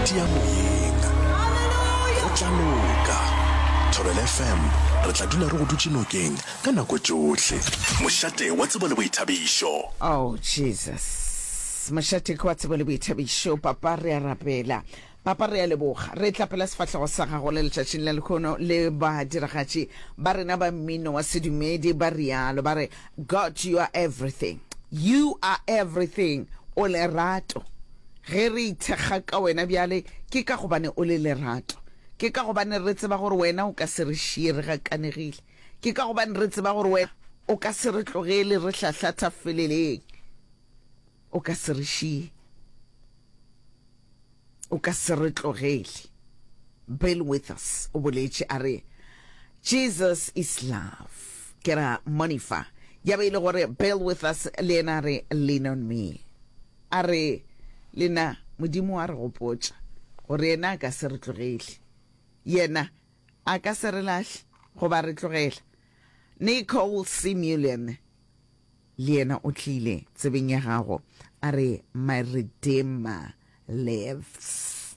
tia moyeng go tla loka thobel fm re tla dula re go dutše nokeng ka nako tšohle mošate wa tsebo le boithabišo Oh Jesus. Mošate ke wa tsebo le boithabišo. Papa re a rapela. Papa re a leboga. Re tla pela sefahlego sa gago le letšatšing la lekhono le badiragatši ba rena ba mmino wa sedumedi ba rialo ba re God you are everything. You are everything. O lerato. Ge re ithekga ka Wena bjale, ke ka gobane O le lerato. Ke ka gobane re tseba gore Wena o ka se re šiye re gakanegile. Ke ka gobane re tseba gore Wena o ka se re tlogele re hlahlatha feleleng. O ka se re šiye. O ka se re tlogele. Bill Withers o boletše a re, Jesus is love. Ke ra monifa. Ya be e le gore Bill Withers le yena a re, Lean on me. A re, Lena, Modimo wa re gopotša gore Yena a ka se re tlogele. Yena A ka se re lahle goba re tlogela. Nicole C. Mullian le yena o tlile tsebeng ya gago, a re, My Redeemer lives.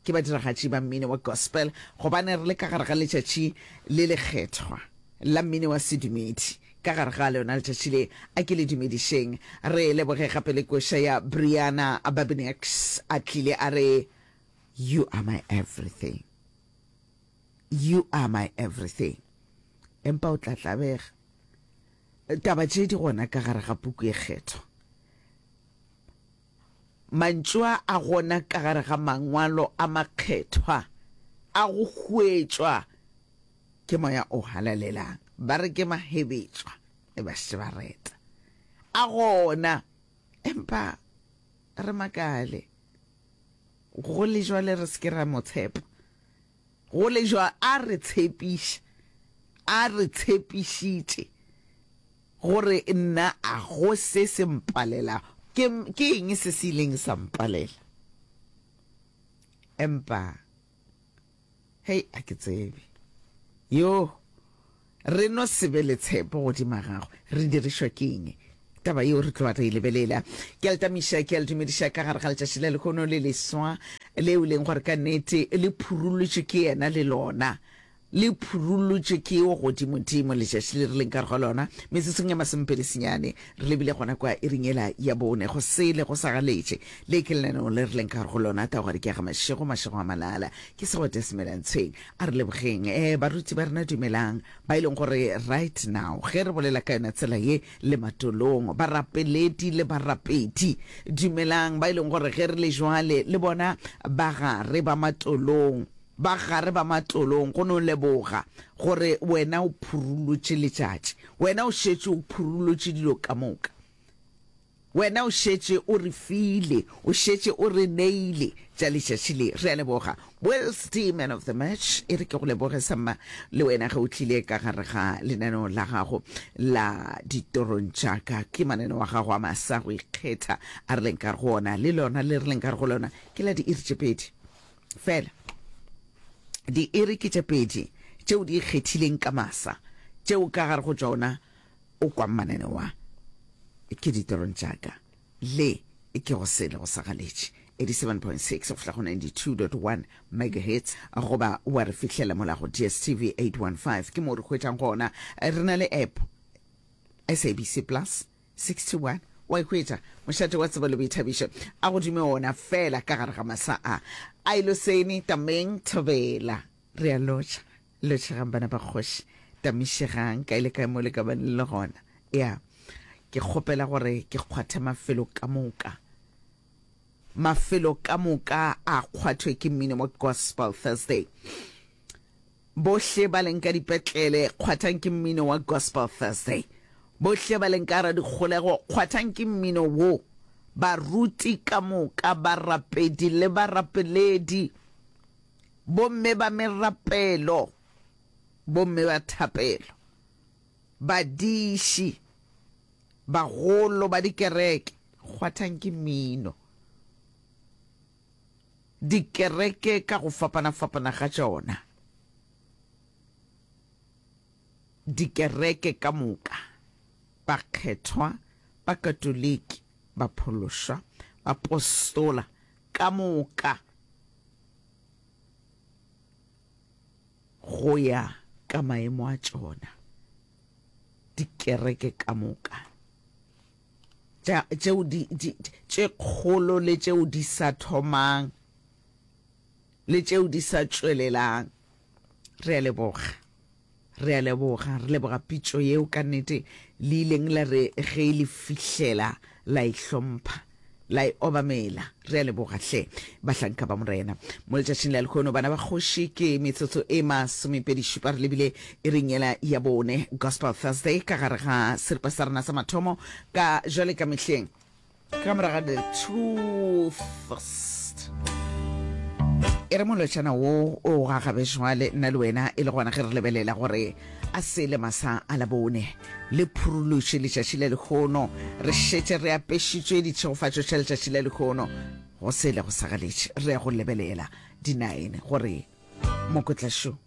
Ke badiragatši ba mmino wa gospel gobane re le ka gare ga letšatši le lekgethwa la mmino wa sedumedi. Ka gare ga lona letšatši le, a ke le dumedišeng re leboge gape le koša ya Briana Babinax a tlile a re, You are my everything, you are my everything. Empa o tla tlabega taba tše di gona ka gare ga puku e kgethwa. Mantšu a a gona ka gare ga Mangwalo a Makgethwa a go hwetšwa ke moya o halalelang. Ba re ke mahebetšwa le bašibareta. A gona, empa re makale go le jwale re se ke ra mo tshepa. Go le bjalo a re tshepiša, a re tshepišitše gore nna a go se se mpalelago. Ke, ke eng se se ileng sa mpalela? Empa, hei, a ke tsebe. Yoo! Re no se be le tshepo godima gagwe. Re dirišwa ke eng? Taba yeo re tloga re e lebelela. Ke a le tamiša, ke a le dumediša ka gare ga letšatši la lehono le leswa, leo e leng gore ka nnete le phurullotšwe ke yena le lona. Le phurullotšwe ke yo Godimodimo letšatši le re leng ka gare ga lona. Metsotsong ya masomepedi senyane, re lebile gona kwa iring yela ya bone, go sele go sa galetše. Le ke lenaneo le re leng ka gare go lona, taogare ke ya ga Mašego, Mašego a Malala. Ke segwete se mela ntsheng. A re lebogeng, eh, baruti ba rena dumelang, ba e leng gore right now, ge re bolela ka yona tsela ye, le matolong, barapeledi le barapedi, dumelang, ba e leng gore ge re le jwale, le bona, ba gare ba matolong, ba gare ba matolong, go no leboga, gore wena o phurulotše letšatši, wena o šetše o phurulotše dilo ka moka. Wena o šetše o re file, o šetše o re neile tša letšatši le. Re a leboga. Wales D, Man of the Match. E re ke go leboge sa mma le wena ge o tlile ka gare ga lenaneo la gago la Ditorong tša ka. Ke mananeo wa gago a masa go ikgetha a re leng ka go ona, le lona le re leng ka go lona ke la diiri tše pedi fela. Diiri ke tše pedi tšeo di ikgethileng ka masa, tšeo ka gare go tšona O kwa mmanane wa Ke ditirong tša ka le e kego sele go sa galetše, 87.6-92.1 megahertz, goba wa re fihlela mola go DSTV 815, ke moo re hwetšang gona. Re na le app SABC Plus 61 wa e hwetša mošate wa tsebo le boithabišo a go dume ona fela ka gare ga masa a. Ailoseni Tameng Thobela, re a lotšha. Lotšhegang bana ba kgoši, tamišegang kae le kae mo le ka ba le le gona. Ya, ke kgopela gore ke kgwathe mafelo ka moka. Mafelo ka moka a kgwathwe ke mmino mo Gospel Thursday. Bohle ba leng ka dipetlele, kgwathang ke mmino wa Gospel Thursday. Bohle ba leng ka ra dikgolego, kgwathang ke mmino wo. Baruti ka moka, barapedi le barapeledi. Bomme ba merapelo, bomme ba thapelo, badiši, bagolo ba dikereke, kgwathang ke mmino. Dikereke ka go fapana-fapana ga tšona, dikereke ka moka, bakgethwa, Bakatoliki, baphološwa, bapostola, ka moka go ya ka maemo a tšona, dikereke ka moka tšeo di, di, tše kgolo le tšeo di sa thomang le tšeo di sa tšwelelang, re a leboga. Re a leboga, re leboga pitšo yeo, ka nnete le ileng la re ge e le fihlela la e hlompha, la e obamela. Re a leboga hle, bahlanka ba Morena. Mo letšatšing la lekhono, bana ba kgoši, ke metsotso e masomepedi šupa re lebile iring yela ya bone, Gospel Thursday, ka gare ga seripa sa rena sa mathomo, ka jwale ka mehleng. ka moraga the truth e re molotšana wo o gagabe šwale nna le wena e le gona ge re lebelela gore a se le masa a la bone le phurulutše letšatši la lekgono re šetše re apešitšwe ditšhegofatšo tša letšatši la lekgono go sele go sagaletše re ya go lebelela dinaene gore mokotlašo